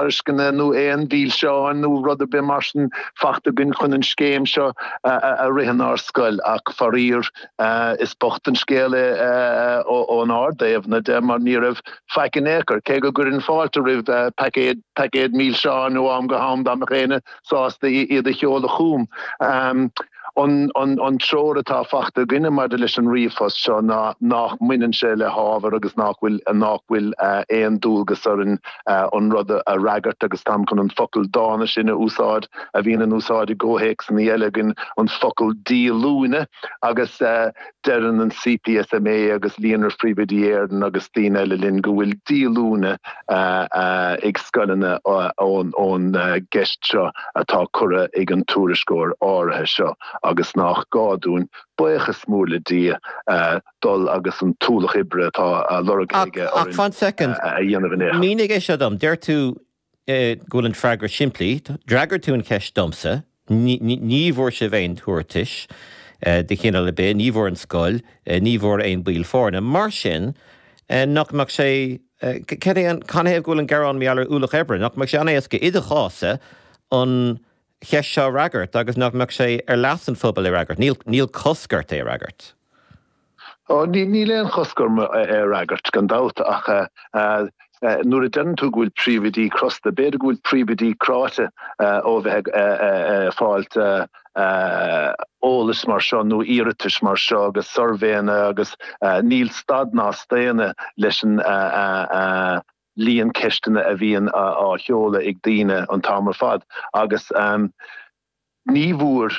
tairisceana nó aon mhilseáin nó rud ar bith mar sin fachta againn chun an scéim seo a rith inár scoil ach, faraor, is bocht an scéal é ónár dtaobhna de mar ní raibh faic in aon chor, cé go gcuirfinn fáilte roimh paicéad paicéad milseán ó am go ham dá mbeadh éinne sásta iad a sheoladh chugam. An treoir atá fachta againne maidir leis an ríomhphost seo ná nách mbaineann sé le hábhar agus nách bhfuil nách bhfuil aon dualgas orainn an rud a fhreagairt agus táim chun an focal dána sin a úsáid a bhíonn in úsáid i gcomhthéacsanna Gaeilge againn, an focal díolúine, agus Deireann an CPSMA agus Líonra Phríomhoidí Éireann agus daoine eile linn go bhfuil díolúine ag scoileanna ón gceist seo atá curtha ag an tuairisceoir áirithe seo agus nách gá dúinn, baochas mór le Dia, dul agus an t-ualach oibre atá á lorg aige orainn a dhéanamh air. Mínigh an méid seo dom. Deir tú go bhfuil an freagra simplí. D'fhreagair tú an cheist domsa. Ní bhfuair sibh aon tabhartais de chineál ar bith, ní bhfuair an scoil, ní bhfuair aon baill foirne. Mar sin, nach mbeadh sé, cad é an, canathaobh go bhfuil an gearán mar gheall ar ualach oibre? Nach mbeadh sé an-éasca i do chás-sa an, cheist seo a fhreagairt agus nach mbeadh sé ar leas an phobail é a fhreagairt. Níl cosc ort é a fhreagairt. Ó, níl aon chosc orm é a fhreagairt, gan dabht, ach nuair a deireann tú go bhfuil príomhoidí crosta, b'fhéidir go bhfuil príomhoidí cráite ó a bheith ag fáilt eolas mar seo nó iarratais mar seo agus suirbhéanna agus níl stad ná staonadh leis an líon ceisteanna a bhíonn á sheoladh ag daoine an t-am ar fad agus ní bhfuair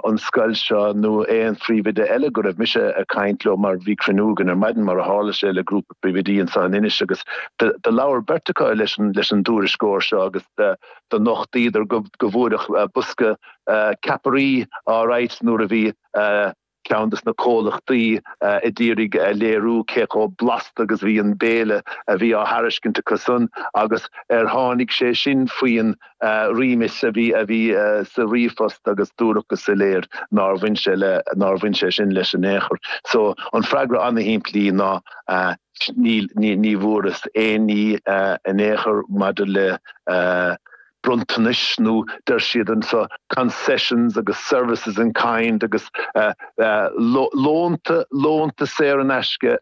an scoil seo nó aon phríomhoide eile go raibh mise ag caint leo mar bhí cruinniú againn ar maidin mar a tharla sé le grúpa príomhoidí anseo in Inis agus do labhair beirt acu leis an dtuairisceoir seo agus do nochtaíodar go bhfuaireadh bosca ceapairí á raghadh nuair a bhí Ceann de na comhlachtaí a d'iarraidh a léiriú cé chomh blasta agus a bhí an béile a bhí á thairiscint acu san agus ar tháinig sé sin faoin remit a bhí a bhí sa ríomhphost agus dúradh go soiléir nár bhain sé le nár bhain sé sin leis in aon chor. So an freagra an-shimplí ná ní bhfuarthas aon ní in aon chor maidir le. bronntanais nó deir siad anseo 'concessions' agus 'services in kind' agus lónta, lónta saor in aisce,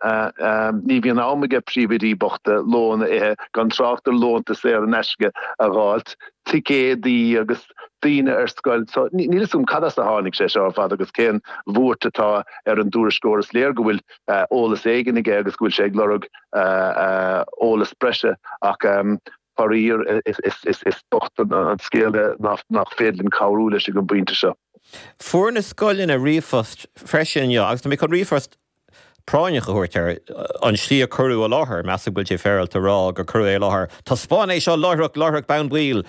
ní bhíonn am ag príomhoidí bochta lón a ithe gan trácht ar lónta saor in aisce a dh'fháilt, ticéadaí agus daoine ar scoil so níl 'fhios a'm cad as a tháinig sé seo ar fad agus cén bhuairt atá ar an dtuairisceoir is léir go bhfuil eolas éigin aige agus go bhfuil sé ag lorg eolas breise ach Faraor, is bocht an scéal é nach féidir linn cabhrú leis ag an bpointe seo. Fuair na scoileanna ríomhphost freisin inniu agus tá mé chun ríomhphost práinneach a thabhairt air, an tslí a cuireadh i láthair. Measaim go bhfuil sé féaráilte a rá gur cuireadh é i láthair, taispeánadh é seo láithr, láithreach bonn baill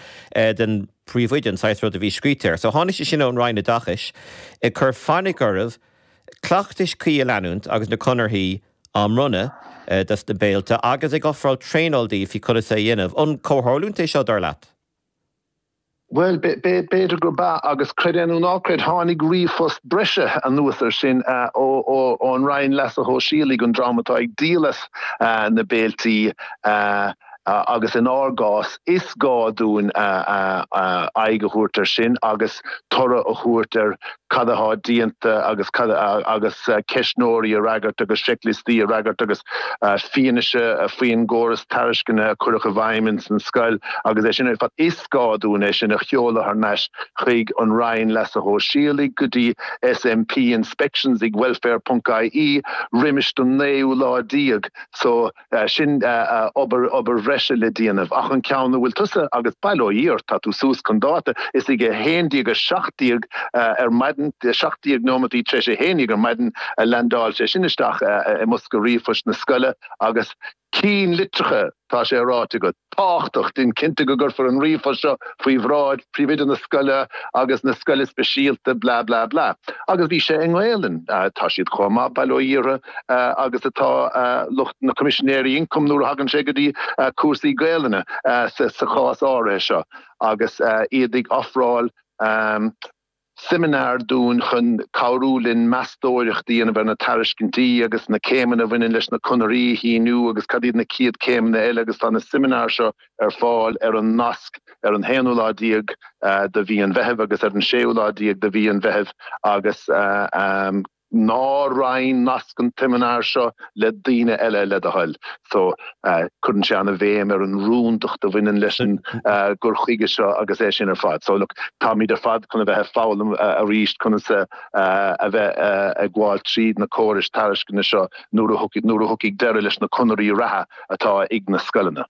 don phríomhoide, an saghas rud a bhí scríte air. So tháinig sé sin ón Roinn Oideachais ag cur fainic oraibh cleachtais cuí a leanúint agus na conarthaí a á mbronnadh do sna béilte agus ag ofráil traenáil dóibh faoi conas é a dhéanamh. An comhtharlúint é seo, dar leat? Bhuel, b'fhéidir gurb ea, agus creid nó ná creid, tháinig ríomhphost breise anuas air sin ón Roinn Leasa Shóisialaigh, an dream atá ag díol as na béilí. agus in ár gcás, is gá dúinn aghaidh a thabhairt air sin agus tabhairt a thabhairt ar cad atá déanta agus agus ceistneoirí a fhreagairt agus seicliostaí a fhreagairt agus fianaise faoin gcóras tairisceana a cuireadh i bhfeidhm ins an scoil agus é sin ar fad. Is gá dúinn é sin a sheoladh thar n-ais chuig an Roinn Leasa Shóisialaigh, go dtí SMP, Inspections ag Welfare ponc ie roimis an naoú lá déag so. Sin obair bhreise le déanamh. Ach an ceann a bhfuil tusa agus bail ó Dhia ort, tá tú suas chun dáta, is ag a haon déag a seacht déag ar maidin, seacht déag neomataí tar éis a haon dhéag ar maidin, a leaindeáil sé sin isteach i mbosca ríomhphoist na scoile agus cinn litreacha, tá sé ráite agat, tábhachtach, déan cinnte go gcuirfear an ríomhphost seo faoi bhráid phríomhoide na scoile agus na scoile speisialta blah blah blah. Agus bhí sé i nGaelainn. Tá siad chomh maith, bail ó Dhia orthu, agus atá lucht na Coimisinéirí Ioncaim nuair a thagann sé go dtí cúrsaí Gaelainne sa chás áirithe seo agus iad ag ofráil seimineár dúinn chun cabhrú linn meastóireacht a dhéanamh ar na tairiscintí agus na céimeanna a bhaineann leis na conarthaí a shíniú agus cad iad na chéad céimeanna eile agus tá na seimineáir seo ar fáil ar an nasc ar an haonú lá déag de mhí an Mheithimh agus ar an séú lá déag de mhí an Mheithimh agus Ná roinn nasc an tseimineáir seo le daoine eile, le do thoil. So cuireann sé an-bhéim ar an rúndacht a bhaineann leis an gcur chuige seo agus é sin ar fad. So táimid ar fad chun a bheith ag foghlaim arís conas a bheith ag gabháil tríd na córais tairisceana seo nuair a thiocfaidh deireadh leis na conarthaí reatha atá ag na scoileanna.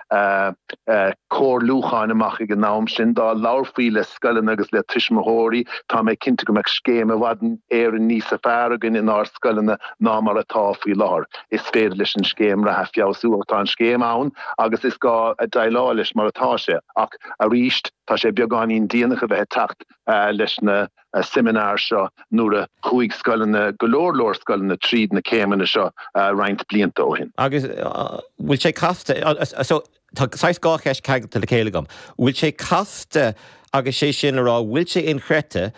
comhairliúcháin amach ag an am sin. Dá labharfaí le scoileanna agus le tuismitheoirí, tá mé cinnte go mbeadh scéim i bhfad Éireann níosa fearr againn inár scoileanna ná mar atá faoi láthair. Is féidir leis an scéim reatha feabhsú ach tá an scéim ann agus is gá déileáil leis mar atá sé. Ach arís, tá sé beagáinín déanach a bheith ag teacht leis na. seimineár seo nuair a chuaigh scoileanna, go leor leor scoileanna, tríd na céimeanna seo roinnt blianta ó shin. Agus an bhfuil sé casta, so tá saghas dhá cheist ceangailte le chéile agam, an bhfuil sé casta agus sé sin le rá an bhfuil sé inchreidte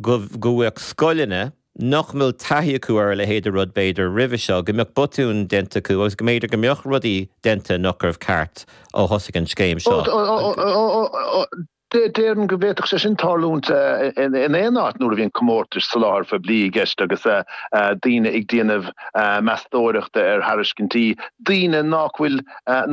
go bhféadfadh scoileanna nach bhfuil taithí acu ar a leithéid de rud b'fhéidir roimhe seo, go mbeadh botúin déanta acu agus go mb'fhéidir go mbeadh rudaí déanta nach raibh ceart ó thosaigh an scéim seo? Déarfainn go bhféadfadh sé sin tarlúint in aon áit nuair a bhíonn comórtais soláthair phoiblí i gceist agus daoine ag déanamh meastóireachta ar thairiscintí, daoine nach bhfuil,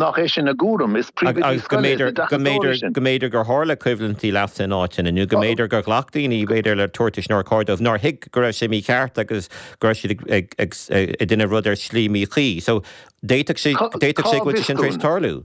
nach é sin a gcúram. Is príomhoidí scoile iad na deachtóirí sin. Go mb'fhéidir gur tharla coimhlintí leasa in áiteanna, nó go mb'fhéidir gur ghlac daoine, b'fhéidir, le tabhartais nár chóir dóibh, nár thuig go raibh sé mícheart agus go raibh siad ag déanamh rud ar shlí míchuí. So d'fhéadfadh sé, d'fhéadfadh sé go bhfuil sé sin tar éis tarlú.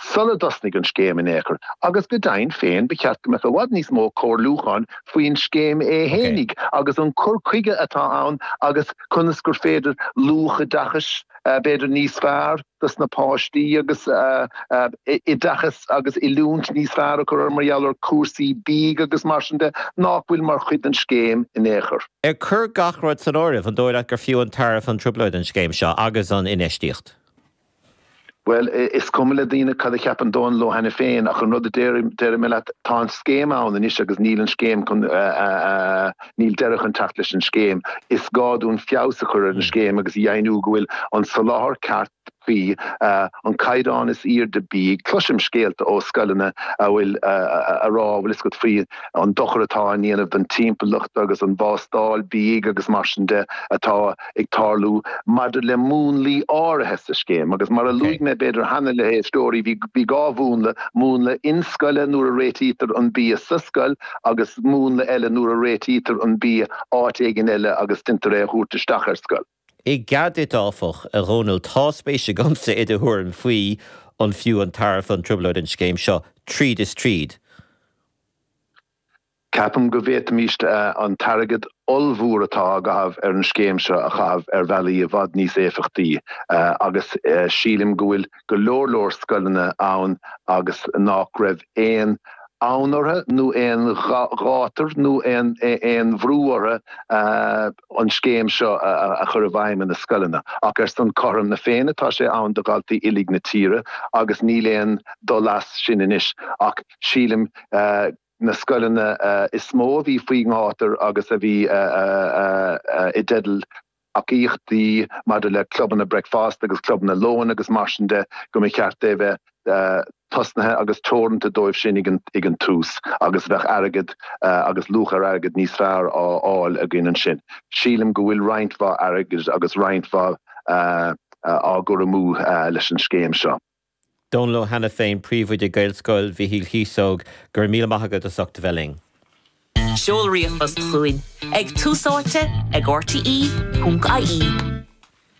sula dtosnaigh an scéim in aon chor, agus go deimhin féin ba cheart go mbeadh i bhfad níos mó comhairliúcháin faoin scéim é fhéinig agus an cur chuige atá ann agus conas gur féidir luach oideachais b'fhéidir níos fearr dos na páistí agus oideachas agus oiliúint níos fearr a chur mar gheall ar chúrsaí bídh agus mar sin de nach bhfuil mar chuid den scéim in aon chor. Ag cur gach rud san áireamh, an dóigh leat gur fiú an tairbhe an trioblóid an scéim seo agus an infheistíocht? Bhuel, is cuma le daoine cad a cheapann Dónal Ó hAiniféin ach an rud a déarfaidh mé leat, tá an scéim ann anois agus níl an scéim chun, níl deireadh chun teacht leis an scéim. Is gá dúinn feabhas a chur ar an scéim agus a dheimhniú go bhfuil an soláthar ceart cuí, an caighdeán is airde bídh. Cloisim scéalta ó scoileanna a bhfuil, a rá, bhfuil 'fhios agat faoi an dochar atá á ndéanamh don timpeallacht agus an bhástáil bídh agus mar sin de atá, ag tarlú maidir le múnlaí áirithe sa scéim agus mar a luaigh mé b'fhéidir cheana le héisteoirí, bhí dhá mhúnla, múnla inscoile nuair a réitítear an bia sa scoil agus múnla eile nuair a réitítear an bia áit éigin eile agus deintear é a thabhairt isteach ar scoil. I gcead duit, áfach, a Dhónaill, tá spéis agamsa i do thuairim faoi an fiú an tairbhe, an trioblóid, an scéim seo tríd is tríd. Ceapaim go bhféadfaimíst an t-airgead ollmhór atá á gcaitheamh ar an scéim seo a chaitheamh ar bhealaí i bhfad níos éifeachtaí agus sílim go bhfuil go leor leor scoileanna ann agus nách raibh aon fhonn orthu nó aon ghátar nó aon bhrú orthu an scéim seo a chur i bhfeidhm ina scoileanna. Ach ar son cothrom na Féinne tá sé ann do dhaltaí uilig na tíre agus níl aon dul as sin anois ach sílim go na scoileanna is mó a bhí faoi ngátar agus a bhí i dteideal tacaíochtaí maidir le clubanna breakfast agus clubanna lóin agus mar sin de, go mba cheart é a bheith tosnaithe agus teoranta dóibh sin ag an tús agus bheadh airgead agus luach ar airgead níos fearr á fháil againn ansin. Sílim go bhfuil roinnt mhaith airgid agus roinnt mhaith á gcur amú leis an scéim seo. Dónal Ó hAiniféin, Príomhoide Gaelscoil Mhichíl Chíosóg, Go raibh míle maith agat as ucht a bheith linn. Seol ríomhphost chugainn ag Tús Áite ag rte ponc ie.